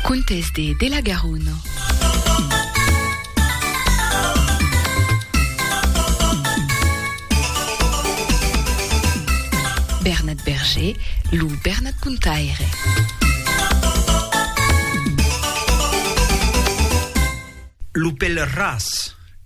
Contes de de la Garonne. Bernat Berger, lo Bernat Contaire. Lo pèl ras.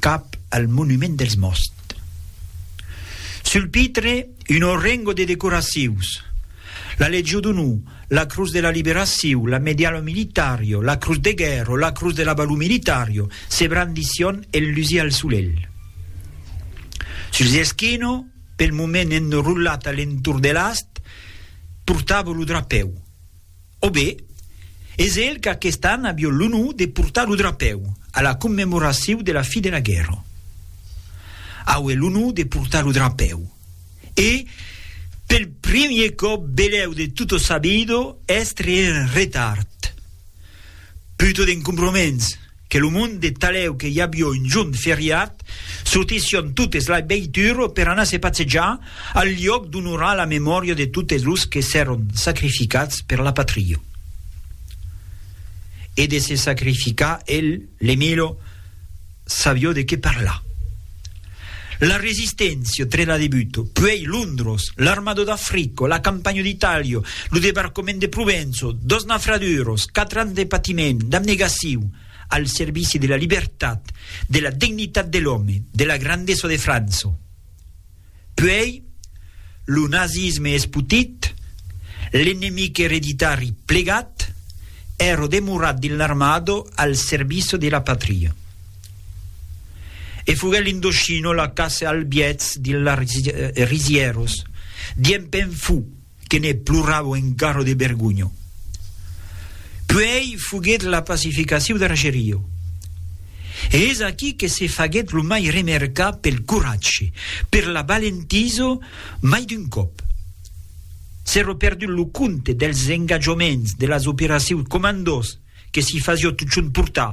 cap al monument dels mòst. Sul pitre, un orrengo de decoracius, la Legió d'Onor, la Crus de la Liberacion, la Medialha Militario, la Crus de Guèrra, la Crus de la Valor Militario, se brandission enlusir al solelh. Suls eschino, pel moment enrolat a l'entorn de l'ast, portava lo drapèu. O be, es el qu'aquest an avió l'onor de portar lo drapèu a la commemoraciu de la fi de la guèrra. Aué l'onor de portar lo drapèu e, pel primier còp belèu de Tutto Sabido, èstre en retard. Puto d'encombroments! Que lo monde talèu que i avió un jorn feriat, sortission totes la veitur per anar se patsejar, al liòc d'onorar la memòria de totes los que s'èron sacrificats per la patria. E de se sacrificar el, l'Emilio, savió de qué parlar. La Resisténcia, tre la debuto, puèi Londros, l'armado d'Africo, la campanho d'Itàlia, lo debarcament de Provenço, dos nafraduros, quatre ans de patiment, d'abnegaciu, al servici de la libertat, de la dignitat de l'òme, de la grandesa de França. Puèi, lo nazisme espotit, l'enemic ereditari plegat, èro demorat dins l'armado al serviço de la patria. E foguèt l'Indochino la caça al biètz dins las risièros, diem pèn fou, que ne ploravo engarro de bergonho. Puèi foguèt la pacificaciu d'Argerio, e es aquí que se faguèt lo mai remercar pel coratge, per la valentiso mai d'un còp. S'èro perdut lo compte dels engatjoments de las operacius comandós que s'i fasió totjorn portar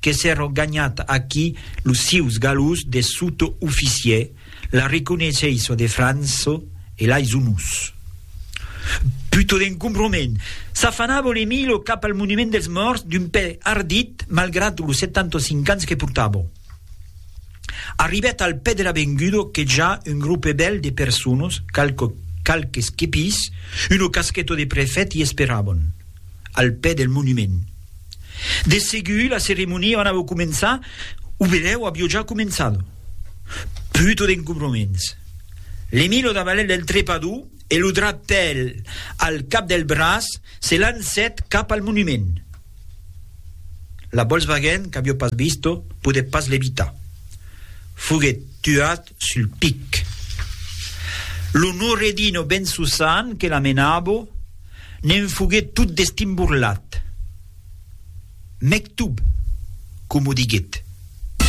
que s'èro ganhat aquí los sieus galòs de sotooficier, la reconeissença de França e lais onors. Puto d'encombrament! S'afanava l'Emilio cap al monument dels mòrts d'un pè ardit malgrat los 75 ans que portava. Arribèt al pè de l'avenguda que ja un gropebèl de personas, qualques quepis, una casqueta de prefèt i esperavan. al pè del monument. De segur la ceremonia anava començar o benèu avió ja començado. Puto d'encobroments. L'Emilio davalèt del trepador e lo drapèl al cap del braç se lancèt cap al monument. La Volkswagen, qu'avió pas visto, podèt pas l'evitar. Foguèt tuat sul pic. Lo Nouredino ben Susan que la menabo ne'n foguet tot destimborlat. Mectoub, coma o diguet.